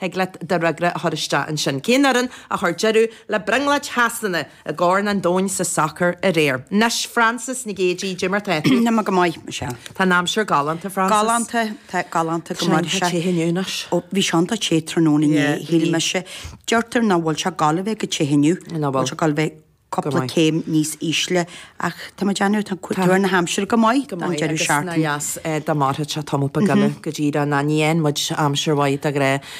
Thig leat do fhreagra a chur isteach ansin. Cén fhoireann a chuir deireadh le brionglóid Shasana i gCorn an Domhain sa sacar aréir? Anois, Frances Nic Géidigh, cad é mar tá tú. Tá mé go maith, Michelle. Tá an aimsir galánta, Frances. Galánta, tá, galánta go maith. Tá sé iontach te inniu anois. Ó, bhí sé iontach te tráthnóna inné, shíl mise. Deirtear nach bhfuil sé ag gabháil a bheith chomh te inniu. Nach bhfuil. Nach bhfuil sé gal a bheith. cúpla céim níos ísle ach tá muid ann, tá tuar na haimsire go maith go maith agus nár dheas dá mairfeadh sé tamall beag eile go dtí an ná ní dhéanfaidh muid aimsir mhaith de go raibh,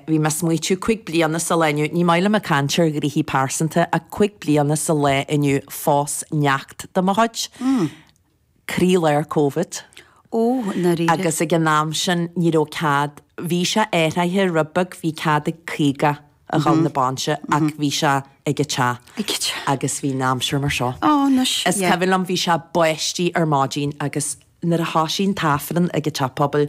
bhí mé ag smaoitiú cúig bliana sa lá inniu, ní maith liom ag caint ar ghnoithe pearsanta ach cúig bliana sa lá inniu phós neacht de mo chuid. croílár Covid. Ó, i ndáiríre? Agus ag an am sin, ní raibh cead, bhí sé athraithe rud beag, bhí cead ag 50 a dhul na bainse ach bhí sé ag an teach agus bhí an aimsir mar seo. Ó, anois, yeah. Is cuimhin liom, bhí sé ag báistí ar maidin agus nuair a thosaigh an t-aifreann ag an teach pobail,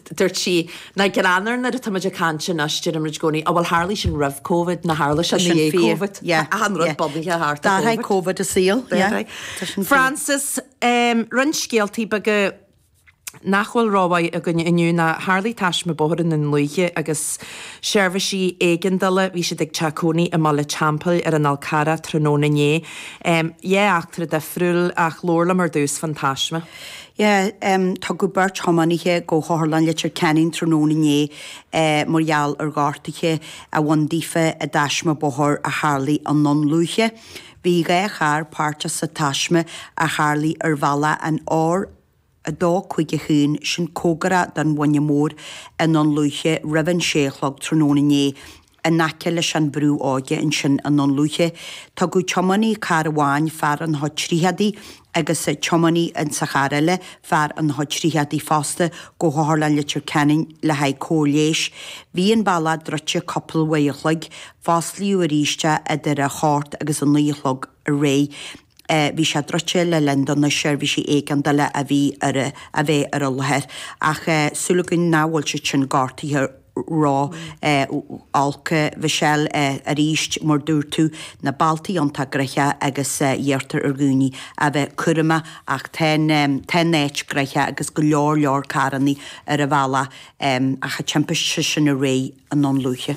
Dúirt sí, Nach greannmhar nuair atá muid ag caint anois, deirim muid i gcónaí, á bhuel tharlaigh sin roimh Covid, ná tharla sin i ndiaidh Covid. Achan rud bunaithe thart ar Covid. D'athraigh Covid an saol. Frances, Em, roinnt scéaltaí beaga nach bhfuil rómhaith againn inniu ná tharlaigh taisme bóthair i nDún Lúiche agus seirbhísí éigeandála, bhí siad ag teach cónaí i mBaile an Teampaill ar an Fhál Carrach tráthnóna inné. Em, dhá eachtra difriúil ach labhair liom ar dtús fán taisme. Yeah, tugadh beirt thiománaithe go hOtharlann Leitir Ceanainn tráthnóna inné mar gheall ar ghortuithe a bhain daofa i dtaisme bóthair a tharlaigh i nDún Lúiche. Bhí dhá charr páirteach sa taisme a tharlaigh ar bhealach an R251, sin comhgarach don Mhuine Mór, i nDún Lúiche roimh an sé a chlog tráthnóna inné In aice leis an brú óige ansin i nDún Lúiche, tugadh tiománaí cairr amháin, fear an H30, agus tiománaí sa charr eile, fear ina chuid tríochaidí fosta, go hotharlann Leitir Ceanainn le haghaidh cóir leighis. Bhí an bealach druidte cupla uair a chloig. Fosclaíodh arís é idir a hocht agus a naoi a chlog. aréir bhí sé druidte le linn do na seirbhísí éigeandála a bhí a bheith ar an láthair. Ach súil againn nach bhfuil siad sin gortaithe ró-olc. Mhichelle, Arís, mar dúirt tú, na bealtaí iontach gnoitheach agus iarrtar ar dhaoine a bheith cúramach ach tá an tá an áit gnoitheach agus go leor leor carrannaí ar an bhealach ach an timpiste sin aréir i nDún Lúiche.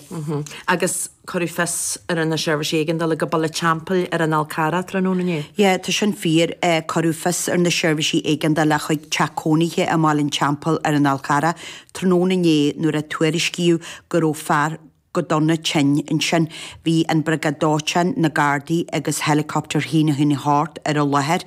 Agus Cuireadh fios ar na seirbhísí éigeandála go Baile an Teampaill ar an Fhál Carrach tráthnóna inné. Yeah, tá sin fíor. Cuireadh fios ar na seirbhísí éigeandála chuig teach cónaithe i mBaile an Teampaill ar an Fhál Carrach tráthnóna inné nuair a tuairiscíodh go raibh fear go dona tinn ansin. Bhí an Bhriogáid Dóiteáin, na Gardaí agus helicopter Shíne Thuaidh Theas ar an láthair.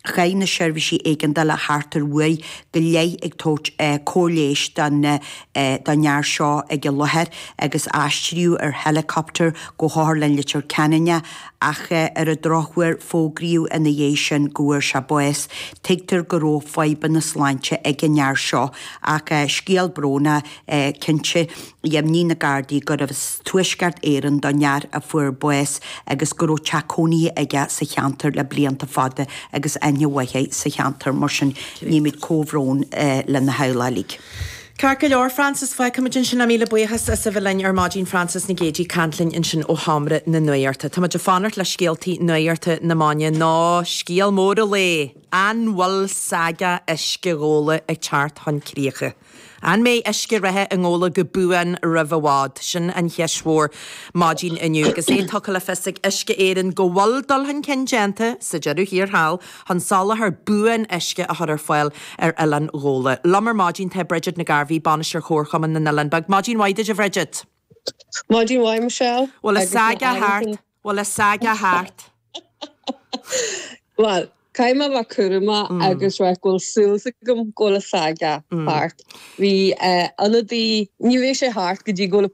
Chaith na seirbhísí éigeandála thart ar uair go leith ag tabhairt cóir leighis don fhear seo ag an láthair agus aistríodh ar helicopter go hOtharlann Litir Ceanainn é ach ar an drochuair fógraíodh ina dhiaidh sin go bhfuair sé bás. Tuigtear go raibh fadhbanna sláinte ag an fhear seo ach scéal brónach cinnte. Dheimhnigh na Gardaí gurbh as Tuaisceart Éireann don fhear a fuair bás agus go raibh teach cónaithe aige sa cheantar le blianta fada agus aithne mhaith air sa cheantar. Mar sin, nímid comhbhrón lena theaghlach. Ceart go leor, Frances, fágfaimid ansin é míle buíochas as a bheith linn ar maidin Frances Nic Géidigh ag caint linn ansin ó Sheomra na Nuachta. Tá muid ag fanacht le scéaltaí nuachta na maidine nó scéal mór an lae, an bhfuil saga uisce Ghabhla ag teacht chun críocha? An mbeidh uisce reatha i nGabhla go buan roimh i bhfad? Sin an cheist mhór maidin inniu agus é tugtha le fios ag Uisce Éireann go bhfuil dul chun cinn déanta sa deireadh thiar thall chun soláthar buan uisce a chur ar fáil ar Oileán Ghabhla. Liom ar maidin tá Bridget Nic Gairbheith, Bainisteoir Chomharchumann na nOileán Beag. Maidin mhaith duit a Bhridget! Maidin mhaith Michelle! Bhfuil an saga thart? Bhfuil an saga thart? Bhuel, caithfidh mé a bheith cúramach agus rá go bhfuil súil agam go bhfuil an saga thart. Bhí ionadaí, ní raibh sé thart go dtí go.